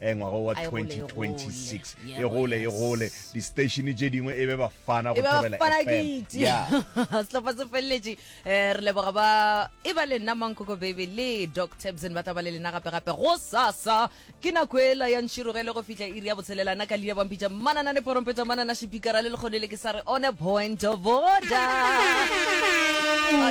e ngwaga wa 2026 e gole e gole di-statione tše dingwe e be bafana go thobela sehlopha se feleletše um re leboga ba e ba le nna mankoko baby le doc tabson ba tla ba le lena gape-gape go sasa ke nako ela ya ntširogele go fihla iri ya botshelelana ka leina bampitša manana le porompeta manana šipikara le lekgone le ke sa re one point of order oh,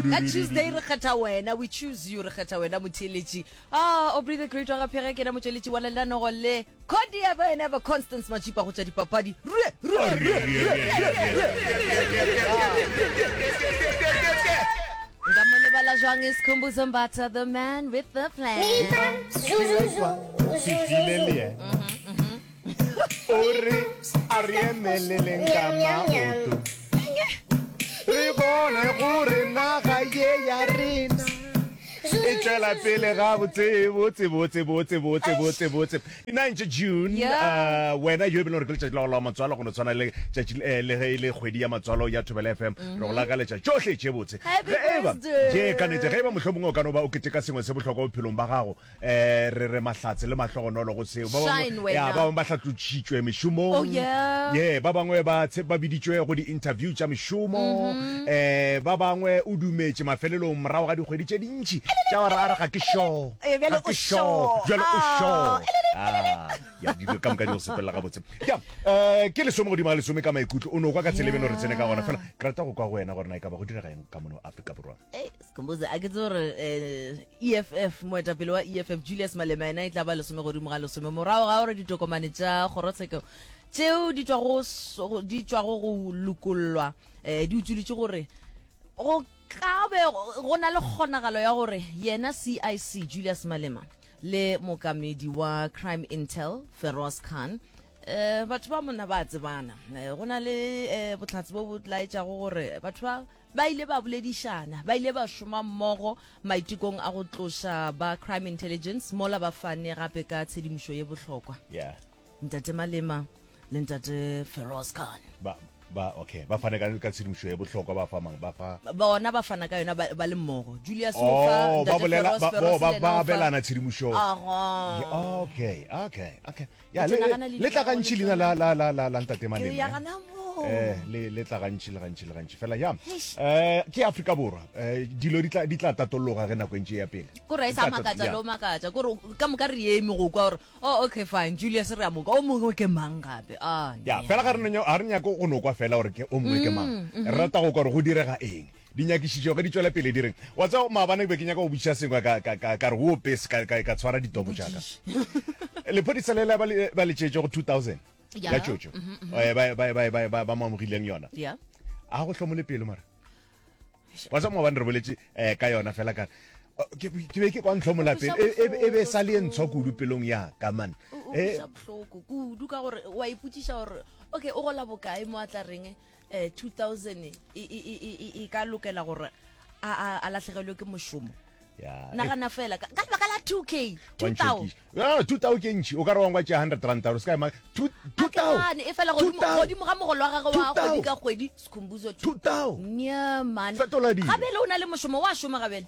ka tuesday re kgetha wena we choose you re kgetha wena motheletši Aa, Aubrey the Great wa ga Phege ke yena motšweletši wa lelanogo le. Cordia ba yena ba Constance Matšipa go tša dipapadi. Rue, rue, rue, rue, Nka mo lebala jwang Isikhumbuzo Mbatha, the man with the plan. Mipa, zuzuzu, zuzuzu. o re a re emeleleng ka maoto re bone gore naga ye ya rena e tšwela pele ga botsebotsebotsebotsebotsebotsebotsebotse 9 june Yeah. uh, wena yo e bele gore ke letšatši la go la matswalo go no tshwana le tšatši eh, le ge e le kgwedi ya matswalo ya thobela fm re go lakaletša tšohle tše botse Happy Ge e ba- birthday. Ke ka nete ge e ba mohlomongwe o ka no ba o keteka sengwe se bohlokwa bophelong ba gago um re re mahlatse le mahlogonolo go seo ba bangwe ba hlatlotšhitšwe mešomong oh, ye ba bangwe ba biditšwe go di-interview tša mešomo um mm-hmm. eh, ba bangwe o dumetše mafelelong morago ga dikgwedi tše dintšhi tša gore a re ga ke sure eh, ga ke sure jalo o sure ah, ya dilo ka moka di go sepelela gabotse ya um ke lesome godimo ga lesome ka maikutlo o ne o kwa ka tshelebeno re tsene ka gona fela ke rata go kwa go wena gore na e ka ba go direga eng ka mono aforika borwa Kombuze a ke tse gore eff eh, e moetapele wa eff julius malema yena e tla ba lesome godimo ga lesome morago ga gore ditokomane tša kgorotsheko tšeo di tšwago go lokollwa um di utsweditše gore go ka be go na le kgonagalo ya gore yena cic julius malema le mokamedi wa crime intel feroz khan um batho ba mona ba tsebana eh, go na le um botlhatsi bo bo tlaetšago gore batho ba Ba ile ba boledišana, ba ile ba šoma mmogo maitekong a go tloša ba Crime Intelligence mola ba fane gape ka tshedimošo ye bohlokwa. Yeah. Ntate Malema le Ntate Feroz Khan. Ba, ba, okay, ba fane ka, ka tshedimošo ye bohlokwa, ba fa mang, ba fa. Bona ba fana ka yona ba, ba le mmogo. Julius o fa Oh, ba Ntate bolela, Feroz, ba, Feroz bo, ba, le yena ba o fa. abelana tshedimošo. Aha. Ye- Okay, okay, okay. ya le le tla gantši leina la la la la la ntate mane eh le le tla gantši le gantši le gantši fela ya eh ke Afrika borwa eh dilo di tla di tla tatologa ge nako ntse ya pele go re sa makatsa lo makatsa go re ka moka re eme go kwa gore oh okay fine Julius re a moka o mongwe ke mang gape ah ya fela ga re nyo a re nyako go nokwa fela gore ke o mongwe ke mang mm, mm-hmm. re rata go kwa gore go direga eng Dinyakišišo ge di tšwela pele di re, Wa tseba, maabane ke be ke nyaka go botšiša sengwe, ka, ka, ka, ka re, Woope, se ka, ka, ka tshwara ditopo tša ka. Lephodisa le la ba le ba letšetše go 2000 Ya. ya tšotšo Mhm, mhm. eh, ba, ba, ba, ba, ba, ba mo amogileng yona. Yeah. A go hlomole pelo mara. Wa tseba maabane re boletše eh, ka yona fela ka Oh, ke be ke be ke kwa ntlhomola pelo e, e, be- e be e sa le e ntshwa kudu pelong ya ka man O- o Eh, utlwisa bohloko kudu ka gore wa ipotšiša gore okay o gola bokae mo a tla reng eh, 2000 e, e, e, e, e, e ka lokela gore a, a, a lahlegelwe ke mošomo Yeah. nagana fela ka ka lebaka la 2k 2000 Ah, 2000 ke ntšhi o ka re wangwa tšea 100 ranta gore se ka ema two- two thou- Atlane, e fela two godimo thou- godimo ga mogolo wa gagwe wa Two thou- kgwedi ka kgwedi sekhumbuzo two thou- nyamane fetola dilo. gabele o na le mošomo wa šoma gabele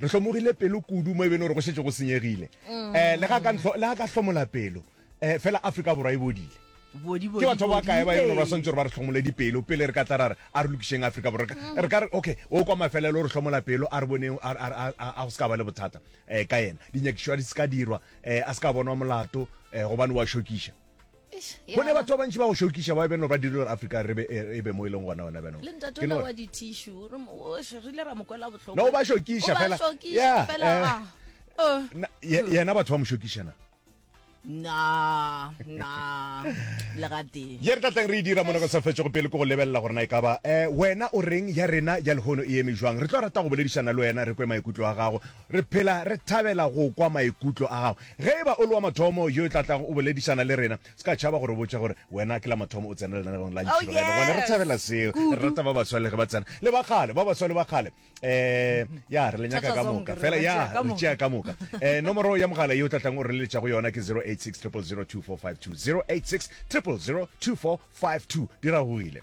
re hlomogile pelo kudu mo e bene gore go šetse go senyegile um le ga ka ntlho- le ga ka hlomola pelo um fela afrika borwa e bodile bodi ke batho ba kae ba e leng gore ba swantse gore ba re tlhomole dipelo pele re ka tla ra re a re lokišeng afrika borwa Re ka- re ka re okay o kwa mafelelo o re hlomola pelo a re boneng a- a- a- a a go se ka ba le bothata um ka yena dinyakišo a di se ka dirwa um a se ka bonwa molato um gobane wa šokiša go ne batho ba bantši ba go šokiša ba beno ba dire gore afrika re be e, e be mo e leng gona gona benole ba šokiša fela ya eh. oh. yena batho ba mo šokišana na na legate ye re tlatlang re e dira mona ka sa fetse go pele ko go lebelela gore na e ka ba um wena o reng ya rena ya lehono e eme jwang re tlo rata go boledišana le wena re kwe maikutlo a gago Re phela re thabela go kwa maikutlo a gago. Ge e ba o le wa mathomo yo e tla tlago o boledišana le rena, se ka tšhaba go re botša gore wena ke la mathomo o tsena lenanegong la Ntšhiloga Ena. Gobane re thabela seo. Re rata ba baswa le ge ba tsena, le ba kgale, ba baswa le ba kgale. Um, ya, re le nyaka ka moka. Fela, ya, re tšea ka moka. Um, nomoro ya mogala ye o tla tlago o re leletša go yona ke 086 000 2452, 086 000 2452. Di ragogile.